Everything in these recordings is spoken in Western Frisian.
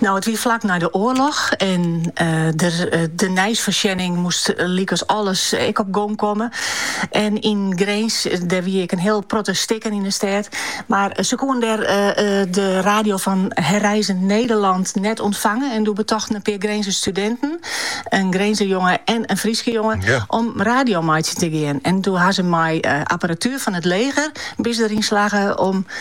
No, it wie flak nei de oarloch en eh, der, eh, de nijsfoarsjenning moest lykas alles ek op gong komme. En in Grins, der wie ik een heel protte stikken in de stad. Maar ze koen der de radio van Herreizen Nederland net ontvangen. En doe betochten een paar Grense studenten, een Grense jongen en een Friese jongen, om radio mee te gaan. En toen hadden ze mij apparatuur van het leger, bis erin slagen om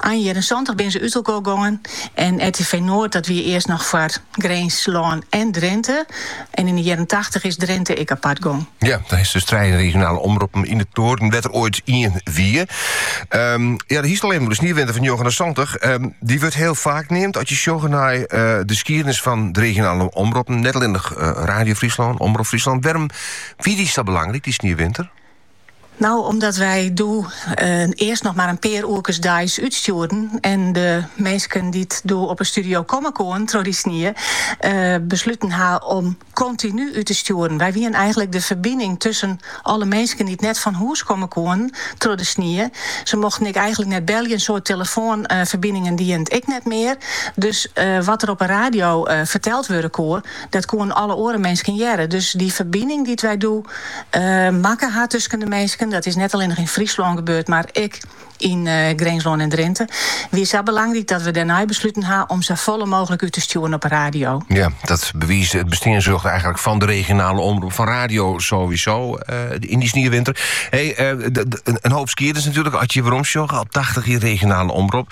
Ein jierren santich binne se útinoar gongen en RTV Noord dat wie earst noch foar Grinslân en Drinte. En yn de jierren tachtich is Drinte ek apart gong. Ja, dan is 't dus trije regionale omroppen yn it noarden, wêr't der ooit ien wie. Ehm, ja, do hiest it al even oer de sniewinter fan 1979. Um, ehm, dy wurdt hiel faak neamd ast je sjogge nei eh, de skiednis fan de regionale omroppen. Net allinnich eh, Radio Fryslân, Omrop Fryslân. Wêrom wie dy sa belangryk, dy sniewinter? No, omdat wy doe earst noch mar in pear oerkes deis útstjoerden en de minsken dy't doe op 'e studio komme koenen troch dy snie, besluten ha om kontinu út te stjoeren. Wy wienen eigenlik de ferbining tusken alle minsken dy't net fan hûs komme koenen troch de snie. Se mochten ek eigenlik net belje en soad telefoanferbiningen dienen it ek net mear. Dus wat der op 'e radio ferteld wurde koe, Dat koenen alle oare minsken hearre. Dus dy ferbining dy't wy doe makke ha tusken de minsken, dat is net allinnich yn Fryslân gebeurd, mar ek yn Grinslân en Drinte, wie sa belangryk dat we dêrnei besluten ha om safolle mooglik út te stjoeren op 'e radio. Ja, dat bewiist it besteansrjocht eigenlik fan 'e regionale omrop, fan radio sowieso yn dy sniewinter. Hee, in hoop skiednis natuerlik, as je weromsjogge op 80 jier regionale omrop.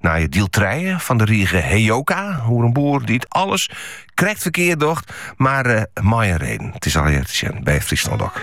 Nije diel trije fan de rige Heyoka, oer in boer dy't alles krekt verkeerd docht, maar uh, eh, mei in reden. It is al earder sjoen by Fryslân DOK.